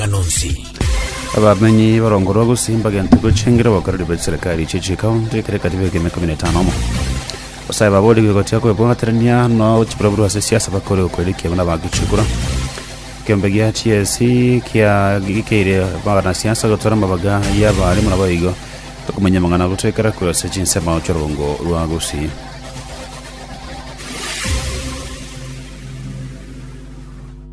amang'ana onsi. Abamenyi barongorwa gose mbagente gochengera abakoreri be serikali chie chikaunti ekero ekatiba eke emeka mine etano omo. Abasae babori bigo gotia kwebwaterania no chiburaburu ase siasa bakore okoirikia buna bagechukura. Ekeombe gia TSC kia gikeire magana siasa gotora amabaga y'abarimu nabo igo bakomenya amang'ana gotoekera korwa ase chinsemo ch'orongo rwa Gusii.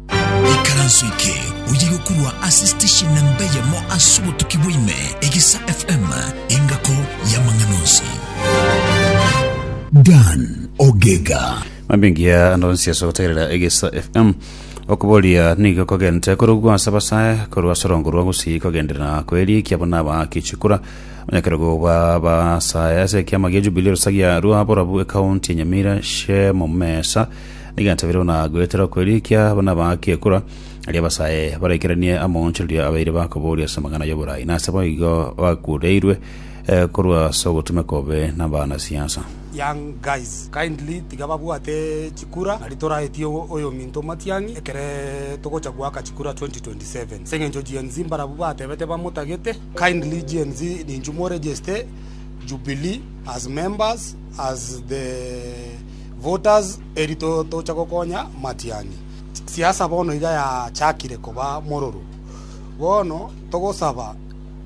Ikaranso eke oye gokurwa ase station namba eyemo ase obotuki bwaime, Egesa FM, engako y'amang'ana onsi. Dan Ogega. mambingiya ande onsi ase ogotegerera egesa fm okoboria nigo kogente korogwa ase abasae korwa ase orongo rwa gusii kogenderera koerikia abana aba kichikura onyakerogo ba basae ase ekiama gia jubilee rusagia rwa borabu ekaunti ya nyamira shemo mesa Negento bire buna goetera okwerikia abo nabaake ekura, erio abasae baraikeranie amaonchorerio abaire bakobooria ase amang'ana y'oboraai, na ase boigo bakureirwe eh, korwa ase ogotumeka obobe nabana siasa. young guys kindly tiga babwate chikura nari toraetie ogo oyominto omatiang'i ekere togocha goaka chikura 2027 ase eng'encho GNZ mbarabwo batebete bamotagete kindly GNZ ninchu mo register Jubilee as members as the Voters eri tocha gokonya Matiani. Siasa bono iga yachakire koba mororo. Bono togosaba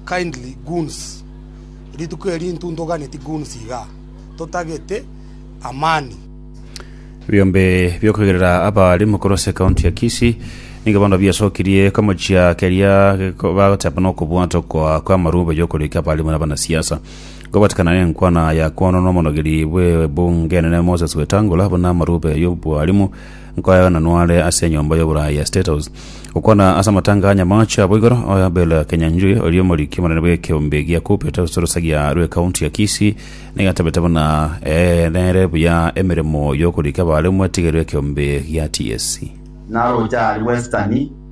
kindly goons rituko eri intu ntoganeti goons iga totagete amani. Ebiombe bi'okoigerera abalimu korwa ase ekaunti ya Kisii nigo bono biasokirie komochia keria bagoteba nokobwatwa kwa kw'amarube y'okorika abalimu na abanasiasa. Kobatikana nenkwana ya kwono n'omonogeri bw'ebunge enene Moses Wetangula buna amarube y'obwalimu nkoyagana nware ase enyomba y'oboraai ya State House. Gokwana ase amatanga a Nyamache abwo igoro, Abel Kenyanjui oria omoriki omonene bw'ekeombe gia Cooperative Sorosagia rw'Ekaunti ya Kisii nigo atabete buna ee nere buya emeremo y'okorika abaremu etigerwe ekeombe gia TSC. Naroche aria Western.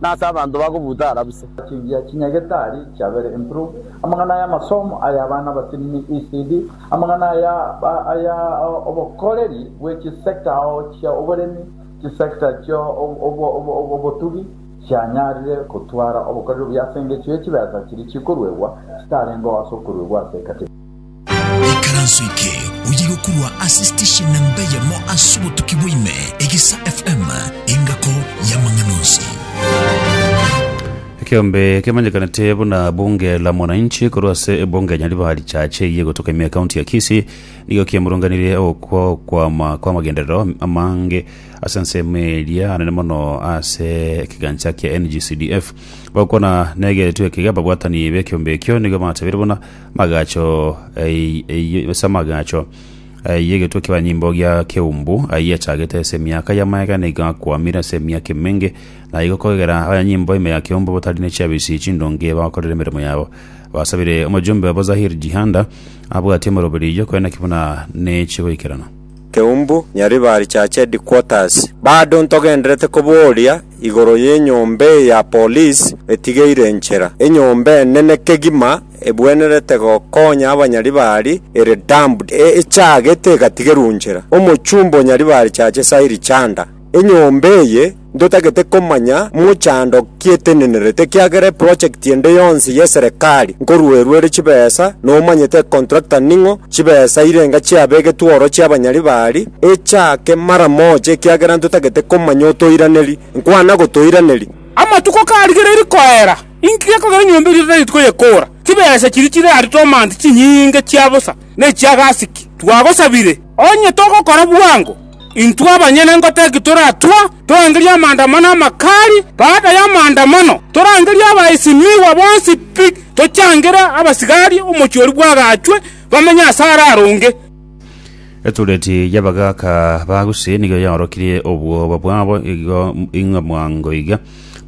Nase abanto bagobuuta ara buse. Chingiya chinyagetari chiabere improved, amang'ana aya amasomo aya abana abatinini ECD, amang'ana aya aya obokoreri bwe chisector ao chia oboremi, chisector chia obotugi chianyarire gotwara obokoreri obuya ase engecho ye chibesa chiria chikoruegwa chitarengeo ase okoruegwa ase ecategory. Ikaranso eke oyigokurwa ase station nemba eyemo ase obotuki bwaime, Egesa FM, engako y'amang'ana onsi. Ekeombe kemanyekanete buna bunge la mwananchi korwa ase ebunge ya Nyaribari Church eye egotoka ime ekaunti ya Kisii nigo kiamurunganirie okwama kw'amagenderero amange ase ensemo eria anene mono ase ekegancha kia NGCDF. Bagokwana negeretwe ekega ababwatani b'ekeombe ekio nigo batebeire buna Amagacho ayio ase amagacho ayio egetwe kia banyimbo gia Keumbu ayio achagete ase emiaka y'amaega nigo akwamire ase emiaka emenge, na igo kogera abanyimbo ime ya Keumbu batari ne chiabisi chindonge bagokorera emeremo yabo. Basabire omojumbe obo Zahir Jihanda abwatie omoroberi oyio koe naki buna ne chigoikerano. Keumbu, Nyaribari Church Headquarters. Bado ntogenderete koboria igoro y'enyomba eye ya police etigeire enchera, enyomba enene kegima. egwenerete gokonya abanyaribari ere damp echaagete egatigerwa inchera. Omochumba o nyaribari chache Sahiri Chanda, Enyomba eye ntotagete komanya mochando ki etenenerete ekiagera eprojekti ende yonsi y'eserekari nkoruerwa ere chibesa nomanyete econtractor ning'o chibesa irenga chiabegetwe oro chi'abanyaribari echaake mara mocha ekiagera ntotagete komanya otoiraneri. Nkwana gotoiraneri. Amatuko karigereiri koera. Inki gekogera enyomba eria totari koyekoora? Chibesa chiria chire aria tomanti chinyinge chia bosa, na echia gasiki. Twagosabire, onye togokora bwango, intwe abanyene ngotaki toratue torangerie amaandamano amakali. Baada y'amaandamano torangerie abaesimigwa bonsi pi, tochangere abasigari omochie oria bwagaachwe bamenye ase araronge. Etureti y'abagaaka ba Gusii nigo yaorokirie obwoba bwabo igo ing'a mwango iga.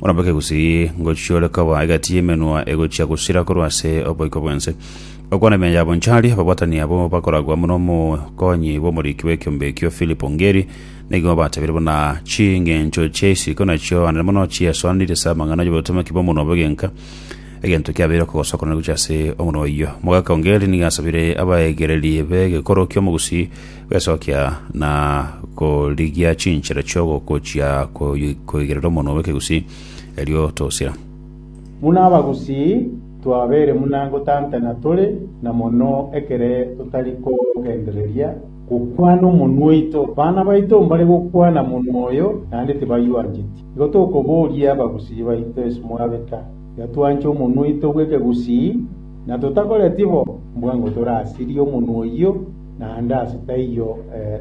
Orabeke gusii ngochiore koba egati y'emenwa egochia gosira korwa ase oboiko bw'ense. Okwana ime yabo nchari, ababwatani abo bakoragwa amo n'omokonyi bw'omoriki bw'ekiombe ekio Philip Ongeri, nigo batebirie buna chingencho chia isiko nachio ande mono chiasoanirie ase amang'ana y'obotomaki bw'omonwa bw'egenka. Egento kiabeire okogosokora gochia ase omonwa oyio. Omogaka Ongeri nigo asabire abaegereria b'egekoro ki'omogusii Gwesokia na korigia chinchera chi'ogokochia koy- koigerera omonwa bw'ekegusii, erio tosira. Buna abagusii, twabeire buna gotantana tore, na mono ekere totari kogendereria gokwana omonwa oito. Bana baito mbare gokwana monwa oyo, naende tibaywancheti. Igo tokoboria abagusii baito ase mwabeka, iga twanche omonwa oito bw'ekegusii, na totakoretia bo, mbwango torasirie omonwa oyio, naende ase taiyo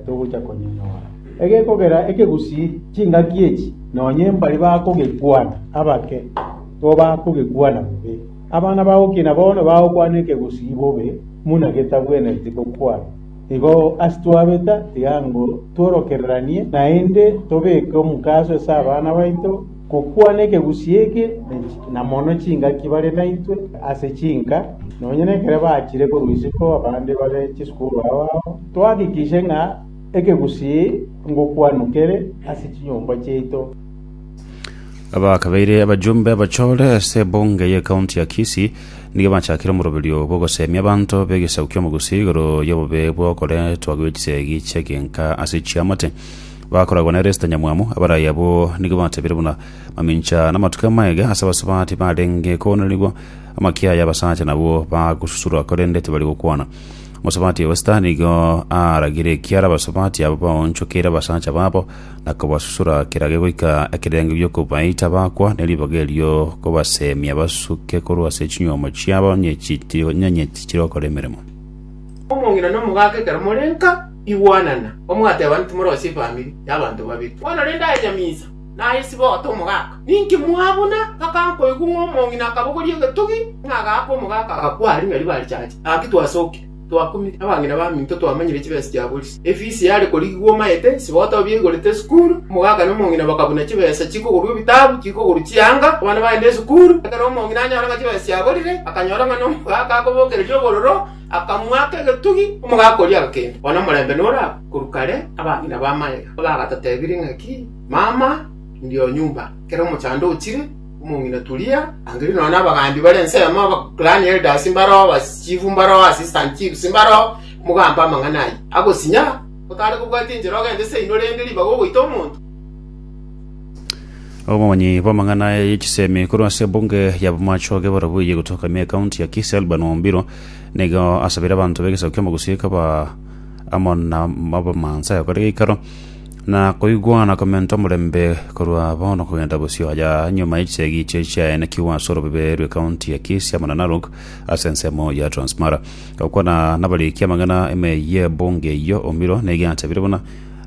togocha konyonyora. Egekogera ekegusii chingaki echi, nonya mbari bakogekwana abake nigo bakogekwana bobe. Abana bagokina bono bagokwana ekegusii bobe buna getabwenereti gokwana. Igo ase twabeta tiga ngu tworokereranie naende tobeke omokaso ase abana baito. Gokwana ekegusi eke na mono chingaki bare naintwe ase chinka, nonya nekere bachire korwa isiko abande babe chisukuru ao ao, twahakikishe ng'a ekegusi ngokwanu kere ase chinyomba chiaito. Abakabeire abajumbe abachore ase ebunge y'ecounty ya Kisii nigo bachakire omoroberio bw'ogoseemia abanto b'egesaku ki'omogusi igoro y'obobe bw'okoretwa gw'echisegi chi'egenka ase chiamate. Bakoragwa ne resita nyamwamu, abarai abwo nigo batebeire buna mamincha namatuko amaiga ase abasubati barenge koonerigwa. Amakia aya abasacha nabwo bagosusurwa, korende tibari gokwana. Omosabatia Wester nigo aaragire ekiara abasubati aba baonchokeire abasacha babo na kobasusura kerage goika ekerengo gi'okobaita bakwa ne ribaga erio kobaseemia basuke korwa ase chinyuomo chiabo onye chitiri onye chitiri gokora emeremo. Omong'ina na omogaaka ekero more nka, Igwanana, omwateeba nti morosie efamiri y'abanto babere. Bono rende aye nyamisa, naye sibote omogaka. Ninki mwabuna? Ngakana koigwa ng'a omong'ina akabogoria egetogi, ng'a agaaka omogaka, agakwa aria ng'a ribaare chacha. Gaki twasokire, twakumire, abang'ina baminto twamanyire chibesa chia Boris. Efisi yare korigigwa omaete, sibote obiaigorete esukuru, omogaka na omong'ina bakabuna chibesa chikogorwa ebitabu, chikogorwa chianga, abana bagenda esukuru. Ekero omong'ina anyora ng'a chibesa chiaborire, akanyora ng'a nomogaka akobokereria obororo, Akamoaka egetugi, omogaka oria agakenda, one omorembe nore agwo, korwa kare abang'ina b'amaega mbagatotebirie ng'a ki, Mama, ndio nyumba. Ekero omochando ochire, omong'ina Tulia, angire nonya n'abagambi bare ensemo, abaclan elders mbare oo, abachief mbare oo, assistant chiefs mbare oo, mogambe amang'ana ayio. Agosinyara, otare kobwatia enchera ogende seino rende ribaga ogoita omonto. Omonyi bw'amang'ana y'echisemi korwa ase ebunge ya Bomacho iga barabwo eye gotoka ime ekaunti ya Kisii Alban Ombiro nigo asabire abanto b'egesaku kia Mogusii kaba amo na abamansa yakore geikaro na koigwana komenta omorembe korwa bono kogenda bosio haja nyuma y'echisegi chie chiaenekigwa ase orobebe rwe kaunti ya Kisii amo na Narok ase ensemo ya Transmara. Gokwana nabarikia amang'ana ime y'ebunge eyio Ombiro nigo achabire buna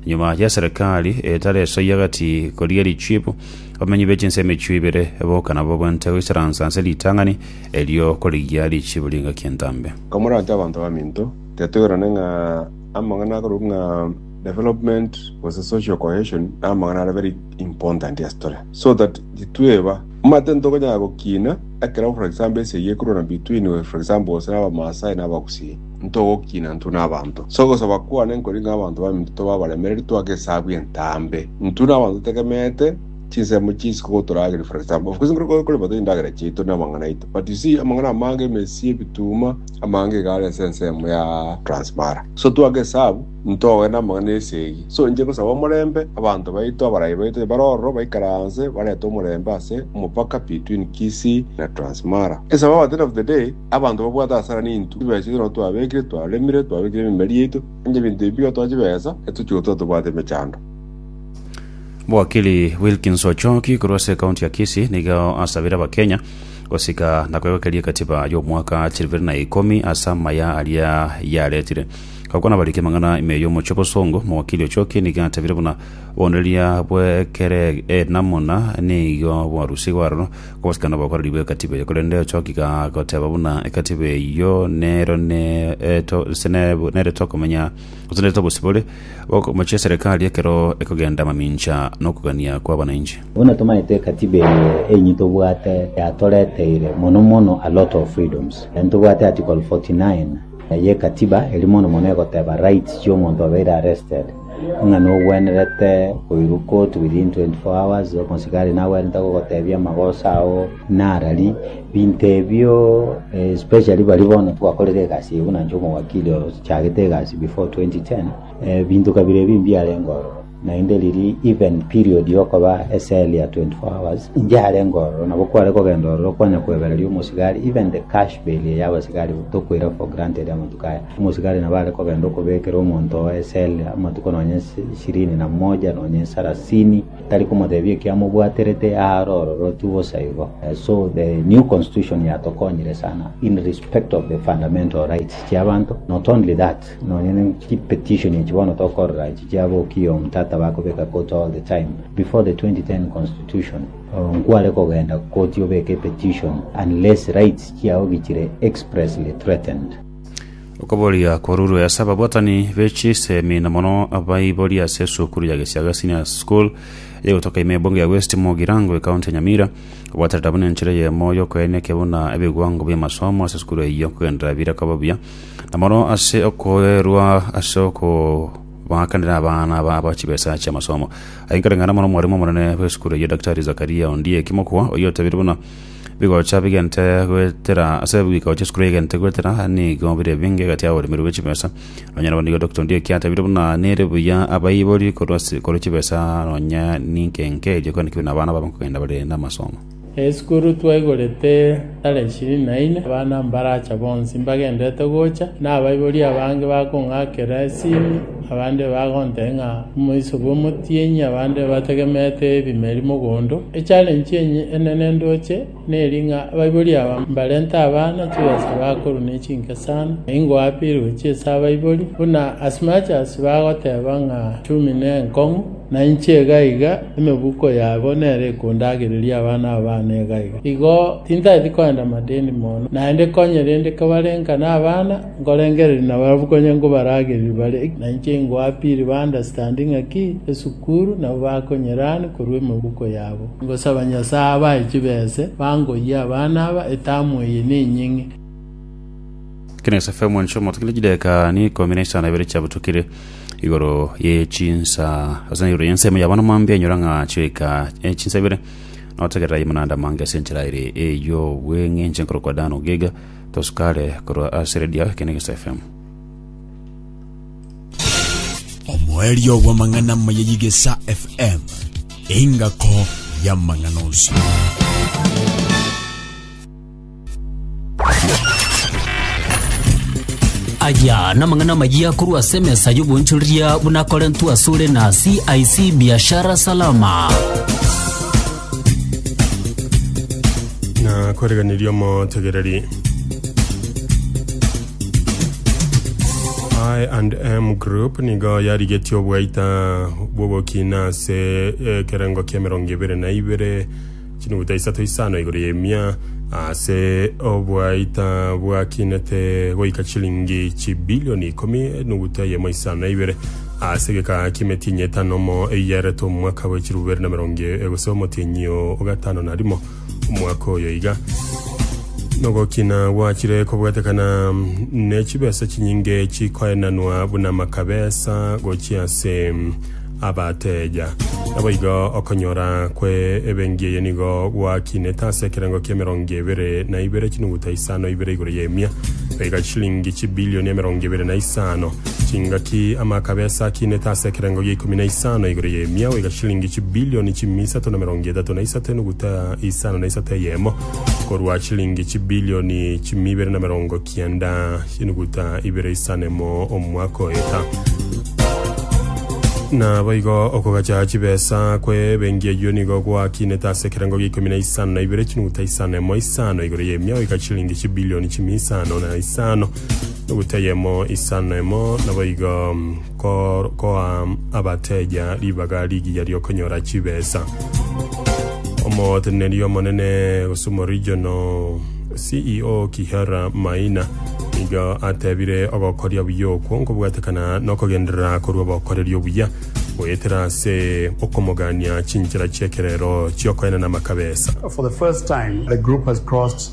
Nyuma y'eserekari etari esoyia egati korigia richibu, abamenyi be chinse emichio ibere boka nabo baente goisaransa ase ritang'ani erio korigia richibu ri'engaki entambe. Komoranche abanto baminto, tetoirane ng'a amang'ana akorokwa ng'a development gose social cohesion namang'ana are very important ase tore so that titweba omanyete ntokonyara gokina ekero for example esegi ekorwana between for example gose na abamaasai na abagusii ntogokina intwe n'abanto. Ase ogosaba kwane nkori ng'a abanto baminto tobe abaremereri twake esabu y'entaambe. Intwe n'abanto totegemeete chinsemo chinsinke gotorageria, for example, of course nkore korema tari endagera chiaito na amang'ana aito but you see amang'ana amange, emesi, ebituuma, amange iga are ase ensemo ya Transmara. So twake esabu ntoe n'amang'ana ya esegi. So inche ngosaba omorembe abanto baito, abarayi baito onye bare ororo baikaranse barete omorembe ase omopaka between Kisii na Transmara. Esabu at the end of the day, Abanto babwate hasara nintwe, chibesa ichio nigo twabekire, twaremire, twabekire ememeri yaito, onye ebinto ebi bigatoa chibesa, intwe chigotuma tobwate emechando. Mwakili Wilkins Ochoki korwa ase ekaunti ya Kisii nigo asabire Abakenya gosika na kwegokeria egatiba y'omwaka chiri ibere na ikomi ase amaya aria yaretire. Gokwana abariki amang'ana ime y'omochie bosongo, Mwakili Ochoki nigo atebire buna obonereria bw'ekere enamuna nigo bwarusigwe aroro Gosikana obokoreri bw'ekatiba eye, korende ochokigha goteba buna ekatiba eyio nero neto, gose ne- nere tokomenya, gose nere tobosibore, ogokomochia eserekari ekero ekogenda amamincha nokogania kw'abanainchi. Buna tomaete ekatiba eye enyi tobwate yatoreteire mono mono a lot of freedoms. Ntobwate article 49 y'ekatiba eri mono mono egoteba rights chi'omonto obeire arrested. ng'a nogwenerete koiruka out within 24 hours, omosigari nagwenerete gogotebia amagoso ao narari, binto ebio eh, especially bari bono twakorire egasi eye buna inche omowakili ochagete egasi before 2010 eh, binto kabira ebi mbiarenge ororo naende riri even period yokoba eseli ya 24 hours ngiarenge ororo nabo kware kogenda ororo kwanya kwebereria omosigari even the cash bail ya abasigari tokoira for granted amatuko aya Omosigari nabo are kogenda okobekera omonto oo esele amatuko nonya ishirini na moja nonya esarasini, tari komotebia ekio amobwaterete aa are ororotu bosa igo. So the new constitution yatokonyire sana in respect of the fundamental rights chia abanto, not only that nonya ne chi petition echi bono tokorora echi chia Aboki Omtata bakobeka koti all the time, before the 2010 constitution oh, nkware kogenda koti obeke petition unless rights chiao gichire expressly threatened. Okoboria korurwe ase ababwatani be chisemi na mono abaibori ase esukuru ya Gesiaga Senior School egotoka ime ebunge ya West Mugirango ekaunti ya Nyamira obwaterera buna enchera eyemo yokoenia ekiya buna ebiwango bi'amasomo ase esukuru eyio kogenderera bire koba buya na mono ase okoerwa ase oko baakanera abana aba aba chibesa chi'amasomo ayenkaring'ana mono omwarimu omonene bw'esukuru eyio Daktari Zakaria Ondieki Mokwa oyio otabire buna Bigocha bigente goetera ase ebigiko chie esukuru egente goetera nigo bire ebinge egati y'aboremeri bwe chibesa. Nonya nabo nigo Dr. Ndioki atebirie buna nere buya abaibori korwa ase korwa chibesa nonya ninke inke erio kende kebigo na abana babe nkogenda bare namasomo. Esukuru twaigorete tarehe ishirini na ine, abana mbaracha bonsi mbagenderete gocha, na abaibori abange bakong'akera esimi, Abande bagontee ng'a omoiso bw'omotienyi, abande bategemete ebimeri mogondo. Echallenge enye enene ndoche neri ng'a abaibori aba mbarente abana chibesa bakorwa nechinke sana. Ingoapirwe chi'ase abaibori buna as much as bagoteba ng'a chumi nenkong'u, nainche iga iga emebuko yabo nero ekondagereria abana aba bane iga iga. Igo tintageti koenda madeni mono, naende konye rende kebarenka nabana. Nkorengereria nabarabwo konya nkobaragerie bare, na inche ingoa pi ribandastandi ng'aki esukuru nabo bakonyerani korwa emegoko yabo. Ngosaba Nyasae abae chibese, bangoyie abana aba, etamu eye nenyeng'e. Ekero esafe y'omwancho omotokirie chideka ni ikomi na isano na ibere chiabutokire igoro ye chinsa ase igoro y'ense ime yabana mambia enyora ng'a chioika e chinsa ibere, notegerera aye monanda mange ase enchera ere ey'obweng'enche nkorokwa Dan Ogega, Tosukare korwa ase Radio Ekenegeso FM. omoerio bw'amang'ana maya yigesa fm engako y'amang'ana onsi aya namang'ana mayia korwa ase emesa y'obonchoreria buna korentwa asore na cic biashara salama na koreganeria omotegereri I and M Group nigo yarigetie obwaita bw'ogokina ase ekerengo kia emerongo ebere na ibere chinuguta isato isano igoro y'emia ase obwaita bwakinete goika chilingi chibilioni ikomi enuguta yemo isano na ibere Ase egekaa ki'emetienyi etano omo eyiaretwe omwaka bwe chilifu bibere na merongo e gose omotienyi o ogatano na rimo omwaka oyo iga nogokina gwachire kobwetekana ne chibesa chinyinge chikoenanwa buna makabesa gochia ase abateja naboigo okonyora kwe ebengi eye nigo gwakinete ase ekerengo ki'emerongo ebere na ibere chinuguta isano ibere igoro y'emia baiga chilingi chibilioni emerongo ebere na isano Chingaki ama akabe ase akinete ase ekerengo gia ikomi na isano igoro y'emiao iga shilingi chibilioni chimi isato na emerongo etato na isato enuguta isano na isato eyemo, korwa chilingi chibilioni chimi ibere na emerongo kianda enuguta ibere isano emo omwaka oeta. Naboigo okogacha chibesa kwe bengi eyio nigo gwakinete ase ekerengo gia ikomi na isano na ibere chinuguta isano emo isano igoro y'emiao iga chilingi chibilioni chimi isano na isano Eguta y'emo, isano emo, naboigo ko, koa abateja ribaga rigiya ri'okonyora chibesa. Omoteneneri omonene gose omorijono CEO Kihara Maina nigo atebire ogokoria buya okwo nkobwatekana nokogenderera korwa obokoreri obuya goetera ase okomogania chinchera chi'ekerero chi'okoenena amakabesa. For the first time, the group has crossed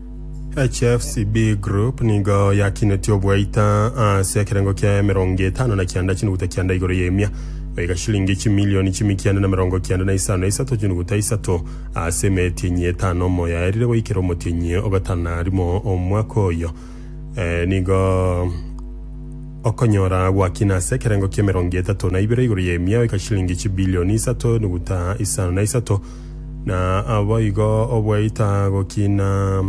HFCB Group nigo yakinetie obwaita ase ekerengo kia emerongo etano na kianda chinuguta kianda igoro y'emia, goika shilingi chimilioni chimi kianda na merongo kianda na isano na isato chinuguta isato ase emetienyi etano omoyaerire goikera omotienyi ogatana rimo omwaka oyo. Eh, nigo okonyora gwakina ase ekerengo kia emerongo etato na ibere igoro y'emia, goika shilingi chibilioni isato nuguta isano na isato Na naboigo obwaita gokina,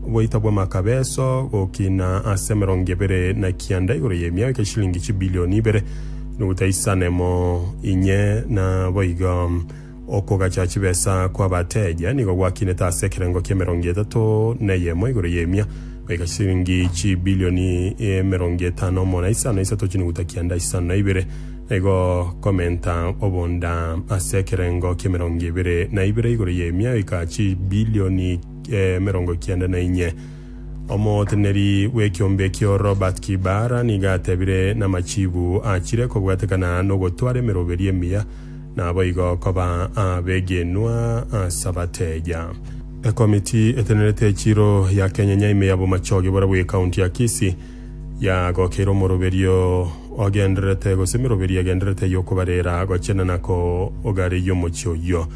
obwaita bw'amakabeso gokina ase emerongo ebere na kianda igoro y'emiao egeshilingi chibilioni ibere, nukuta isanemo inye, na boigo okogacha chibesa kw'abateja nigo gwakinete ase ekerengo ki'emerongo etato neyemo igoro y'emia egeshilingi chibilioni emerongo etano mona isano isato chinukuta kianda isano na ibere. Igo komenta obonda ase ekerengo ki'emerongo ebere na ibere igoro y'emiaka chibilioni emerongo kianda na inye. Omoteneneri bw'ekiombe ekio Robert Kibara nigo atebire namachibu achire kobwatekana nogotwara emeroberi emiya naboigo koba abegenwa ase abateeja. Ekomiti etenerete echiro ya Kenya Nyaime ya Bomachoge borabu ye County ya Kisii, Yagokeire omoroberio ogendererete, gose emeroberio egendererete y'okobarera, gochena na kogareyia omochie oyio.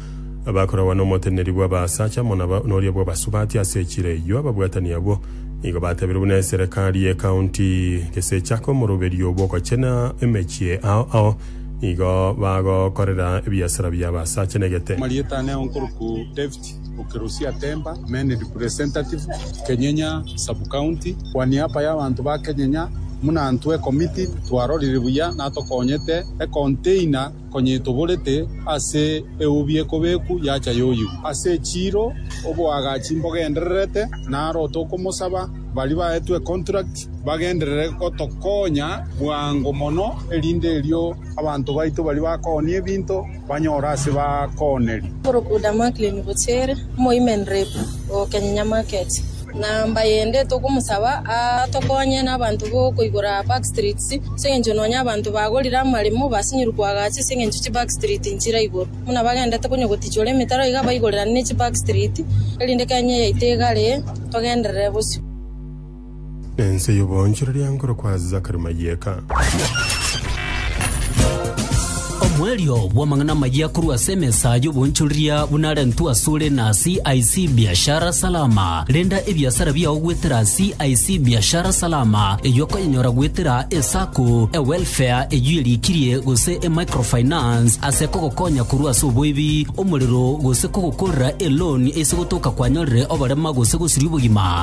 Bakoragwa n'omoteneneri bw'abaasacha amo noria bw'abasubati ase echiro eyio. Ababwatani abwo nigo batebeirwe buna eserekari y'ekaunti. Gesechaka omoroberio bw'ogochena emechie ao ao, nigo bagokorera ebiasara bi'abaasacha negete. Marieta ne onkorokwa David. Ukirusia Temba, Main Representative, Kenyenya Sub-County, Kwa niaba y'abanto ba Kenyenya buna intwe ekomiti twarorire buya na tokonyete econtainer konyetoborete ase eubi ekobeku yacha yoyigwa ase echiiro oboagachi mbogendererete naro tokomosaba baria baetwe econtract bagenderere gotokonya bwango mono erinde erio abanto baito baria bakooni ebinto banyore ase bakooneri. Korokuda Maklini gochia ere, omoimenere ogokenyenya market. Na mbayende togomosaba atokonye nabanto bokoigora back streets, ase engencho nonya abanto bagorire amaremo basinyirwe koagacha ase engencho chi back street nchire igoro. Buna bagendete konya gotichora emetaro iga baigorerane ne chi back street, erinde Kenya yaito egare togenderere bosio. Ense y'oboonchoreria nkorokwa Zakari Mayeka. Omoerio bw'amang'ana amayia korwa ase emesa y'oboonchoreria buna arentwe asore na CIC Biashara Salama. Renda ebiasara biao goetera CIC Biashara Salama, eyio okoyenyora goetera eSacco, eWelfare eyio erikirie gose eMicrofinance ase kogokonya korwa ase oboibi, omorero gose kogokorera eLoan ase gotoka kwanyorire oborema gose gosiria obogima.